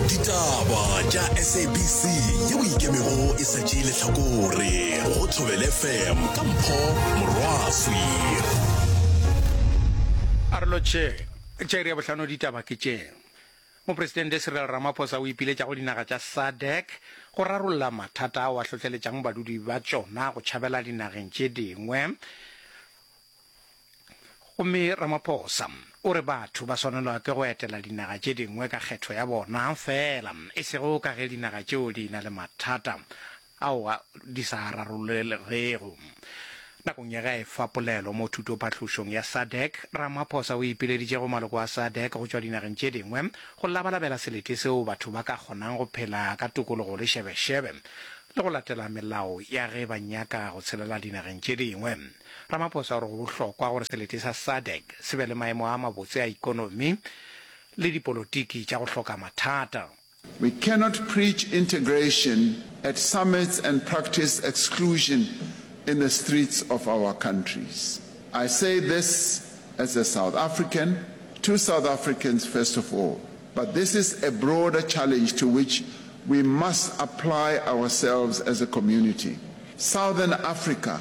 ditaba tša sabc yeo ikemego e sa tšee lehlakore go thobel fm ka mpho morwaswi arlo tše tše re ya bohlano ditaba ke tše mopresidente cyril ramaphosa o ipiletša go dinaga tša sadec go rarolla mathata ao a hlohleletšang badudi ba tšona go tšhabela dinageng tše dingwe Gomme Ramaphosa o re batho ba swanelwa ke go etela dinaga tše dingwe ka kgetho ya bona feela, e sego ka ge dinaga tšeo di ena le mathata ao di sa a rarollegego. Nakong ya ge a efa polelo mo thutophahlošong ya SADC, Ramaphosa o ipileditše go maloko a SADC go tšwa dinageng tše dingwe go labalabela selete seo batho ba ka kgonang go phela ka tokologo le šebešebe le go latela melao ya ge ba nyaka go tshelela dinageng tše dingwe. Ramaphosa o re go bohlokwa gore selete sa sadc se be le maemo a mabotse a ikonomi le dipolotiki tša go hloka mathata. We cannot preach integration at summits and practice exclusion in the streets of our countries. I say this as a South African, to South Africans first of all, but this is a broader challenge to which we must apply ourselves as a community. Southern Africa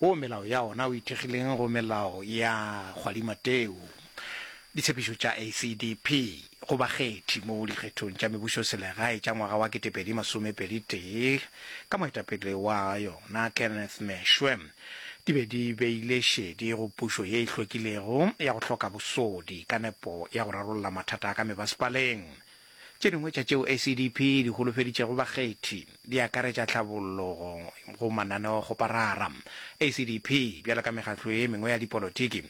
Wo melao ya ona o ithekgileng go melao ya kgwadimateu, ditshepišo tša ACDP go bakgethi mo dikgethong tša mebušoselegae tša ngwaga wa 2021 ka moetapele wa yona Kenneth Meshwe di be di beile šedi go pušo ye e hlwekilego ya go hloka bosodi ka nepo ya go rarolla mathata a ka mebasepaleng. Tše dingwe tša tšeo SEDP e di holofeditšego bakgethi di akaretša tlhabollo go mananeokgoparara. SEDP, bjalo ka mekgatlo ye mengwe ya dipolotiki,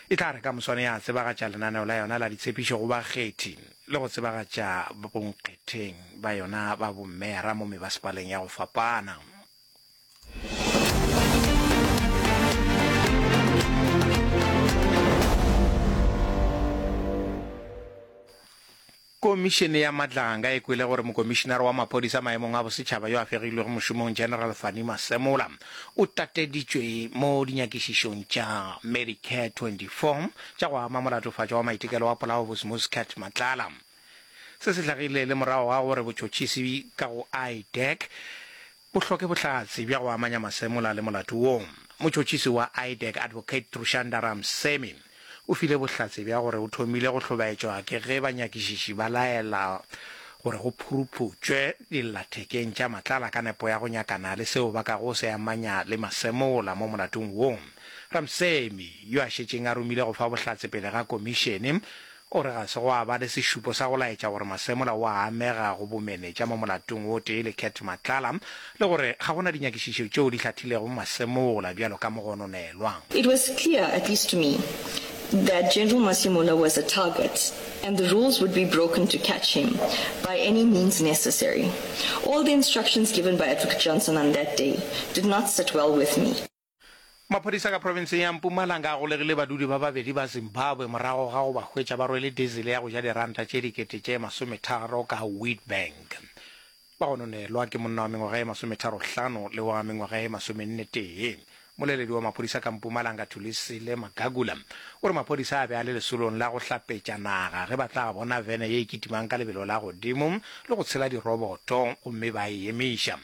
e tla re ka moswane ya tsebagatša lenaneo la yona la ditshepišo go bakgethi le go tsebagatša bonkgetheng ba yona ba bommeara mo mebasepaleng ya go fapana. komišene ya matlanga e kwele gore mokomišenare wa maphodisa maemong a bosetšhaba yo a fegilwego mošomong general fani masemola o tateditšwe mo dinyakišišong tša medicare 24 tša go ama molatofatšo wa maitekelo wa polao bosmos cat matlala Se se hlagile le morago ga gore botšotšisi ka go IDEC bo hloke bohlatse bja go amanya Masemola le molato wo. Motšotšisi wa IDEC Advocate Trushanda Ramsamy o file bohlatse bja gore o thomile go hlobaetšwa ke ge banyakišiši ba laela gore go phuruphutšwe dillathekeng tša matlala ka nepo ya go nyakana le seo ba ka go se amanya le Masemola mo molatong wo. Ramsamy, yo a šetšeng a romile go fa bohlatse pele ga komišene, O re ga se gwa ba le sešupo sa go laetša gore Masemola o a amega go bomenetša mo molatong o tee le Cat Matlala le gore ga go na dinyakišišo tšeo di hlathilego Masemola bjalo ka mogononelwa. It was clear, at least to me, that General Masemola was a target and the rules would be broken to catch him by any means necessary. All the instructions given by Advocate Johnson on that day did not sit well with me. Maphodisa ka provinseng ya Mpumalanga a golegile badudi ba babedi ba Zimbabwe morago ga go ba hwetša ba rwele diesel ya go ja diranta tše dikete tše masometharo ka Witbank. Ba gononelwa ke monna wa mengwaga e masometharohlano le wa mengwaga e masomennetee. Moleledi wa maphodisa ka Mpumalanga Thulisile Magagula o re maphodisa a be a le lesolong la go hlapetša naga ge ba tla bona vene ye e kitimang ka lebelo la godimo le go tshela diroboto gomme ba e emiša.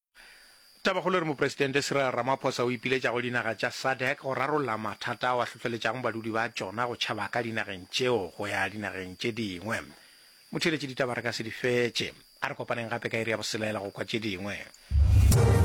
Tabakgolo e re Mopresidente Cyril Ramaphosa o ipiletša go dinaga tša SADC go rarolla mathata ao a hlohleletšago badudi ba tšona go tšhaba ka dinageng tšeo go ya dinageng tše dingwe. Motheeletši ditaba re ka se di fetše. A re kopaneng gape ka iri ya boselela go kwa tše dingwe.